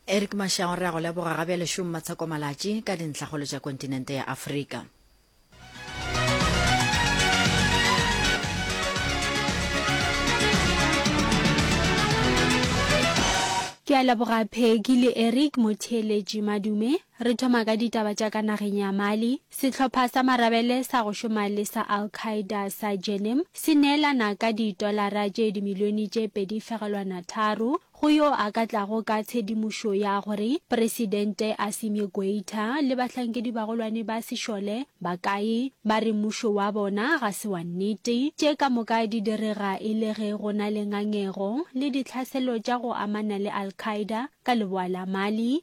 Eric Mashango re a go leboga ga bjale šomo matsheko malatši ka dintlhagolo tša kontinente ya Afrika. Ke a leboga Peggy le Eric motheeletši madume. Re thoma ka ditaba tša ka nageng ya Mali. Sehlopha sa marabele sa go šoma le sa Al-Qaeda sa Jenim se neelana ka ditolara tše dimilione tše pedi fegelwana tharo go yo a ka tlago ka tshedimošo ya gore Presidente Assimi Goita le bahlankedi bagolwane ba sešole ba kae. Ba re mmušo wa bona ga se wa nnete. Tše ka moka di direga e le ge go na le ngangego le ditlhaselo tša go amana le Al-Qaeda ka leboa la Mali.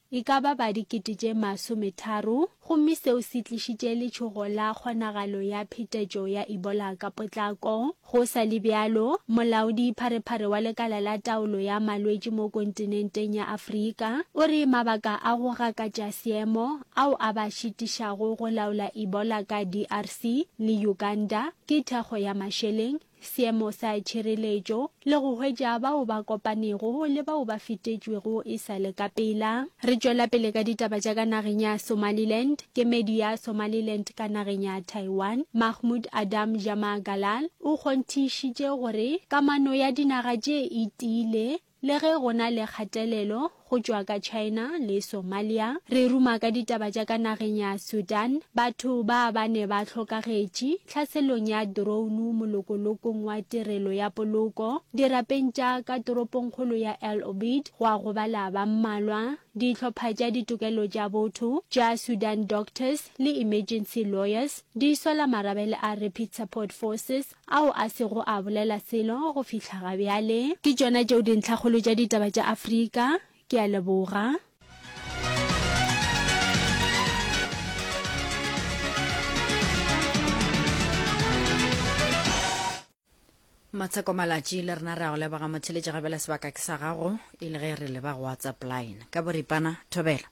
e ka ba ba dikete tše masometharo, gomme seo se tlišitše letšhogo la kgonagalo ya phetetšo ya Ebola ka potlako. Go sa le bjalo, molaodipharephare wa Lekala la Taolo ya Malwetši mo kontinenteng ya Afrika o re mabaka a go gakatša seemo ao a ba šitišago go laola Ebola ka DRC le Uganda ke thekgo ya mašeleng, seemo sa tšhireletšo le go hwetša bao ba kopanego le bao ba fetetšwego e sa le ka pela. Re tšwela pele ka ditaba tša ka nageng ya Somaliland. Kemedi ya Somaliland ka nageng ya Taiwan, Mahmood Adam Jama Galal o kgonthišitše gore kamano ya dinaga tše e tiile Le ge go na le kgatelelo go tšwa ka China le Somalia, re ruma ka ditaba tša ka nageng ya Sudan, batho ba ba ne ba hlokagetše tlhaselong ya drounu molokolokong wa tirelo ya poloko, dirapeng tša ka toropongkgolo ya El Obeid gwa gobala ba mmalwa, dihlopha tša ditokelo tša botho tša Sudan Doctors le Emergency Lawyers di sola marabele a Rapid Support Forces ao a sego a bolela selo go fihla ga bjale. Ke tšona tšeo dintlhakgolo tša ditaba tša Afrika. Ke a leboga. Matsheko Malatši le rena re a go leboga motheletši gabela sebaka ke sa gago e le ge re leba go WhatsApp line ka boripana thobela.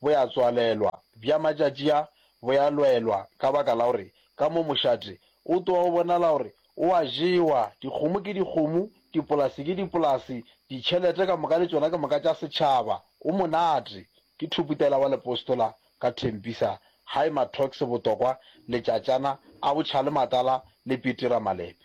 bo ya tswalelwa, bja matšatši a bo ya lwelwa ka baka la gore ka mo mošate o tloga o bonala gore o a jewa, dikgomo ke dikgomo, dipolase ke dipolase, ditšhelete ka moka le tšona ke moka tša setšhaba. O monate. Ke thoputela wa lepostola ka thempisa Hi Mathox Botokwa letšatšana a botšhalematala le petira malepe.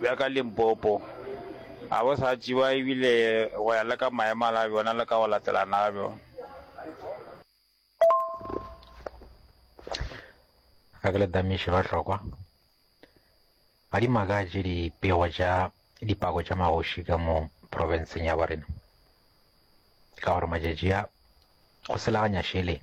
bja ka Limpopo ga bo sa tšewa e bile go ya le ka maemala a bjona le ka go latelana ga bjona. Ga ke le damiše ba hlokwa, ga di makatše dipego tša dipako tša magoši ka mo profenseng ya borena, ka gore matšatši a go selaganya šeleng.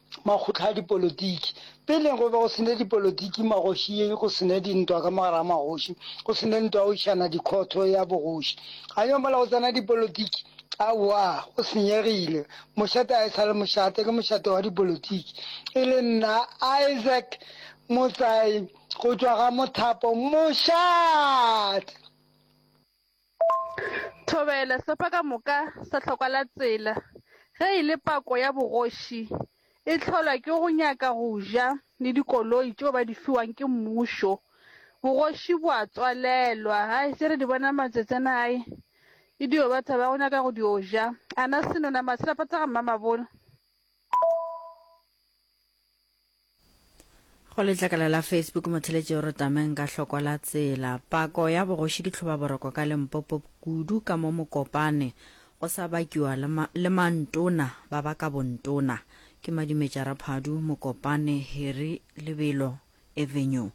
makgotla a dipolotiki. Peleng go be go se ne dipolotiki magošing, go se ne dintwa ka mogare ga magoši, go se ne ntwa ya go išana dikhotho ya bogoši. A yo mola go tsena dipolotiki? Aowa, go senyegile. Mošate ga e sa le mošate, ke mošate wa dipolotiki. E le nna, Isaac Motsai, go tšwa ga Mothapo, mošate! Thobela, Sefa ka moka sa hlokwa la tsela ge e le pako ya bogoši e hlolwa ke go nyaka go ja le dikoloi tšeo ba di fiwang ke mmušo. Bogoši bo a tswalelwa. Hai, tše re di bona matsatsi ana hai e dio ba thaba go nyaka go dio ja. Ana Senona, Maselapata ga Mmamabolo. go letlakala la facebook motheletši o re tameng ka hloko la tsela pako ya bogoši ke tlhoba boroko ka lempopo kudu ka mo mokopane go sa bakiwa le mantona ba ba ka bontona ke madimetša raphadu mokopane heri lebelo avenue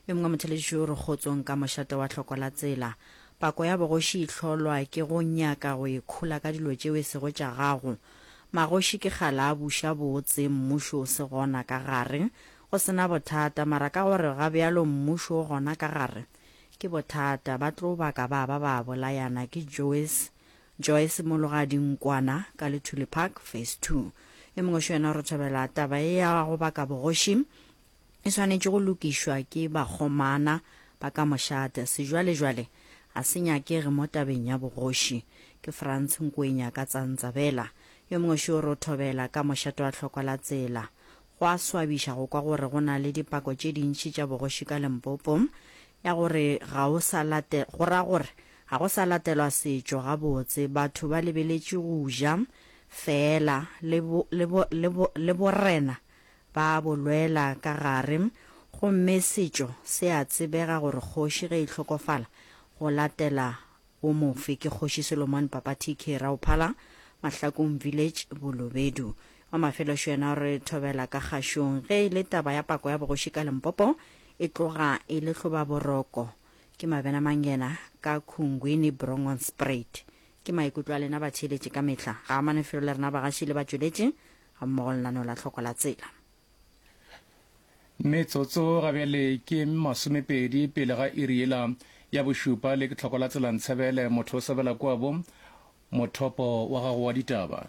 Yo mongwe mothelediši o re kgotsong ka mošate wa hloko la tsela. Pako ya bogoši e hlolwa ke go nyaka go e khola ka dilo tšeo e sego tša gago. Magoši ke kgale a buša botse, mmušo o se gona ka gare. Go se na bothata, mara ka gore ga bjalo mmušo o gona ka gare, ke bothata. Ba tlo baka ba ba ba bolayana. Ke Joyce, Joyce Mologadi Nkwana, ka Luthuli Park, Phase Two. Yo mongwe xo yena o re thobela taba e ya go baka bogoši. e swanetše go lokišwa ke bakgomana ba ka mošate. Sejwalejwale ga se nyakege mo tabeng ya bogoši. Ke Frantz Nkwenya ka tsa Ntsabela, yo mongwe šo ro thobela ka mošate wa tlhoko la tsela. Go a swabiša go kwa gore go na le dipako tše dintši tša bogoši ka Limpopo ya gore ga o sa late, go ra gore ga go sa latelwa setšo gabotse, batho ba lebeletše go ja feela le, le, le, le borena Ba bo lwela ka gare. Gomme setšo se a tsebega gore kgoši ge e hlokofala go latela wo mofe ke Kgoši Solomon Papa TK Rauphala, Mahlakong Village, Bolobedu. Wa Mafeloxo yena o re thobela ka kgašong ge e le taba ya pako ya bogoši ka Limpopo e tloga e le hloba boroko. Ke mabena mang yena ka Khungwini Brongonspruit? Ke maikutlo a lena batheeletši ka mehla. Ga a amane felo le rena bagaši le batšweletši gammogo lenaneo la tlhoko la tsela. Metsotso gabjale ke masomepedi pele ga iri yela ya bošupa le ke tlhoko la tsela Ntshebele motho o sebela kwabo mothopo wa gago wa ditaba.